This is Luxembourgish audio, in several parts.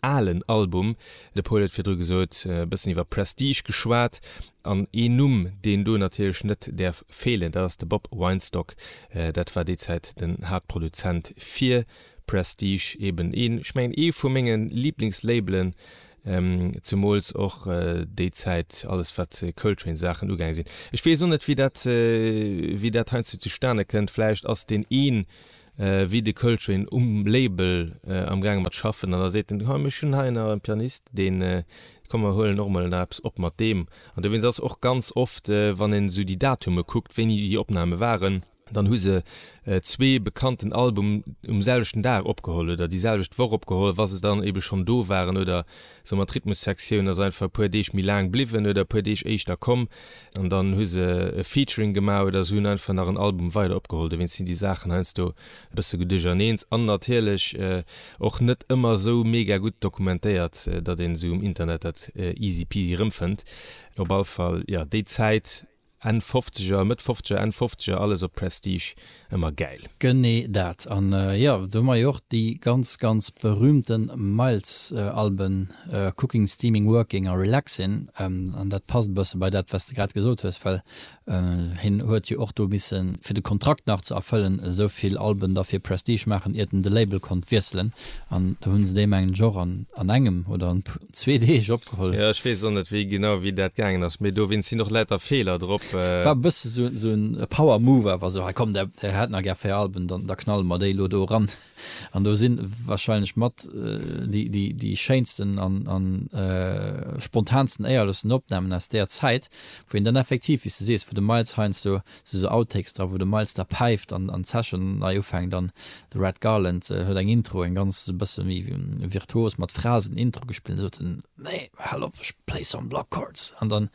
Alen Album. De Paul huet virdru gesot, e bëssen iwwer Prestige geschwat. An een Numm, deen do natierlech net däerf feelen, dat ass de Bob Weinstock. Dat war déi Zäit den Haaptproduzent fir Prestige, eben een, ech mengen, ee vu menge Liblingslabelen, zemools och déi Zäit, alles wat Coltrane-Saachen ugaange sinn. Ech weess och net, wéi dat, wéi dat heiansdo zustane kënnt. Vläicht ass deen een wéi de Coltrane um Label amgaange mat schaffen, an da seet en, Hei, ech hunn hei nach e Pianist, deen, komm mer huelen och emol nach eppes op mat deem. An dowéinst ass och ganz oft, wann een esou déi Datume kuckt, wéini déi Opname waren, dann hu se zwee bekannten Album um selwechten Dag opgeholl oder déi selwecht Woch opgeholl, wa se dann ebe schonn do waren oder Sou mat Rhythmussektioun ass einfach e puer Deeg méi laang bliwwen oder e puer Deeg éischter komm an dann hu se e Featuring gemaach oder se hunn einfach nach en Album weider opgeholl. Dowéinst sinn déi Saachen heiansdo e bësse geduercherneens an natierlech och net ëmmer sou mega gutt dokumentéiert, datt een se um Internet dat easy peasy erëmfënnt. Op all Fall, jo, déi Zäit. Enn Fofzeger, Mëtt Fofzeger, Enn Fofzeger, alles op Prestige, ëmmer gäil. Genee dat. An jo, do hu mer jo och déi ganz, ganz berühmte Miles-Alben, Cooking, Steaming, Working a Relaxin'. An dat passt e bësse bei dat, wat s de grad gesot hues, well hien huet jo och do misse fir de Kontrakt nach ze erfëllen, esou vill Alben da fir Prestige maachen, iert en de Label konnt wiesselen. An do hunn se déi, mengen ech, och an engem oder an zwee Deeg opgeholl. Jo, ech weess och net, wéi genau, wéi dat gaangen ass, mee dowéinst sinn och lauter Feeler drop. War e bësse sou en, sou en Power Move awer, sou, hei komm, där, där hat nach gär véier Alben, dann, da knalle mer déi elo do eran. An do sinn wahrscheinlech mat déi, déi, déi schéinsten an, an spontansten, éierlechsten Opnamen aus där Zäit, wou een dann effektiv, wéi s de sees, wou de Miles heiansdo, Et si sou Outtakes dra wou de Miles da päift an an d'Session nei ufänkt an de Red Garland huet eng Intro, eng ganz e bësse méi virtuos mat Phrasen Intro gespillt an da sot en, Nee, hal op, ech play some block chords an dann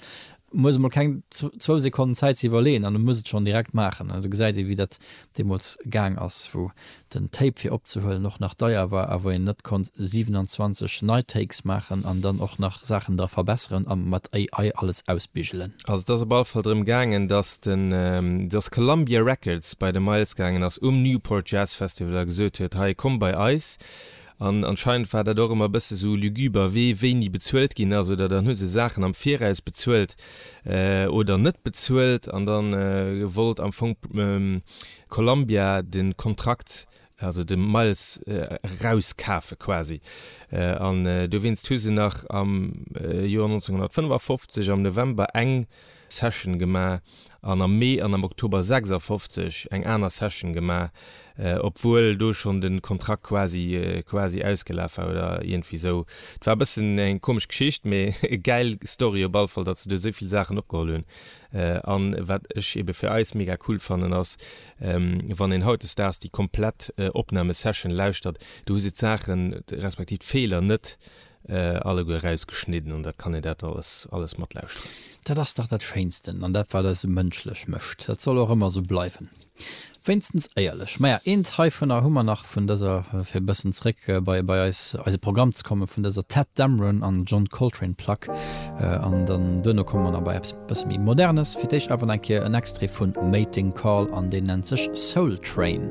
muss emol keng zwou Sekonnen Zäit ze iwwerleeën an e muss et schonn direkt maachen an do gesäit ee wéi dat deemools gaang ass, wou den Tape fir opzehuelen och nach deier war a wou een net konnt 27 nei Takes maachen an dann och nach Saachen dra verbesseren a mat AI alles ausbigelen. Also et ass op alle Fall drëm gaangen, dass de, dass Columbia Records bei de Miles gaangen ass um Newport Jazz Festival a gesot huet, hei komm bei eis An anscheinend war dat och ëmmer e bësse sou lugüber, wee wéini bezuelt ginn ass. Oder dann hu se Saachen am Viraus bezuelt oder net bezuelt. An da wollt am Fong Columbia de Kontrakt, also de Miles erauskafe quasi. An dowéinst hu se nach am Joer 1955 am November eng Session gemaach an am Mee an am Oktober 56 eng aner Session gemaach, obwuel do schonn de Kontrakt quasi quasi ausgelaf war oder iergendwéi esou. Et war e bëssen eng komesch Geschicht, mee e gäil Story op alle Fall, datt se do esou vill Saachen opgeholl hunn. An wat ech eebe fir eis mega cool fannen ass, wann een hautdesdaags déi komplett Opnahme-Session lauschtert, du hu se d'Saachen respektiv d'Feeler net äh, alleguer rausgeschnidden an dat kann ee dat alles, alles matlauschteren. Dat ass dach dat Schéinsten an dat, wat eis esou mënschlech mécht. Dat soll och ëmmer esou bleiwen. Wéinstens éierlech. Maja, eent heivunner hu mer nach, vun dëser, fir e bëssen zréck bei, bei eis, eise Programm ze kommen, vun dëser Tadd Dameron an John Coltrane Plack. Äh, an dann duerno komme mer nach bei eppes e bësse méi Modernes. Fir d'éischt awer nach eng Kéier en Extrait vu Mating Call an deen nennt sech Soul Train.